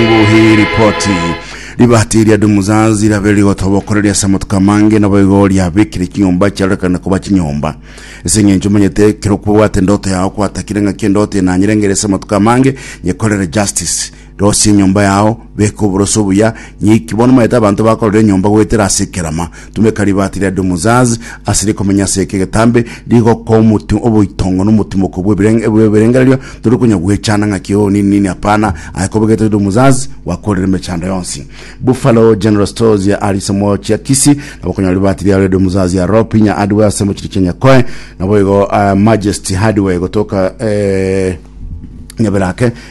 Nguhi ripoti ribati ria Dumuzazi riabeire rigotobokoreria ase amatuko amange naboigo riabekire chinyomba chiarorekane koba chinyomba ase eng'encho omanyete kero kwobwate endoto yao kwatakire ng'aki endoto eye nanyerengere ase amatuko amange nyekorere justice rosia enyomba yao beka oboroso obuya nyeiki bono omanyete abanto bakorora enyomba goetera ase ekerama Tumeka ribaati ria Dumuzaz ase rikomenya ase eke getambe, rigokwa omotu oboitongo na omotimoko bw'ebirengererio, tori konya gwechanda ng'aki oo nini nini, hapana, aye kobe gete Dumuzaz gwakorire emechando yonsi. Buffalo General Stores ya Arisemo chia Kisii nabo konya ribaati riabo ria Dumuzaz ya Ropinya Hardware ase mochie chia Nyakoe, naboigo Majesty Hardware gotoka Nyabera ake.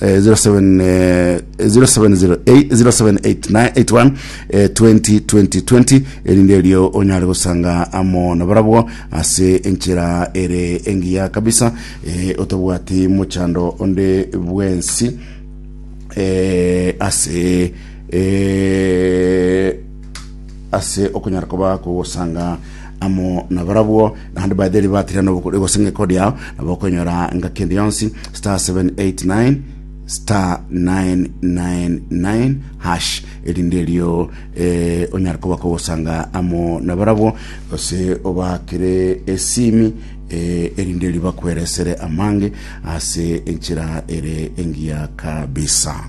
eh, 07, eh, 0708 078981 eh, 2020 erinde erio onyare gosanga amo nabarabwo ase enchera ere engiya kabisa eh, otabwati mochando onde bwensi eh, ase eh, ase okonyara koba kogosanga amo nabarabwo naende batheri batira nobokori gose ng'eko riao nabo okonyora engaki ende yonsi star 789 star 999 hash erinde erio eh, onyare koba kogosanga amo nabarabwo gose obakire esimi eh, erinde erio bakweresere amange ase enchera ere engiya kabisa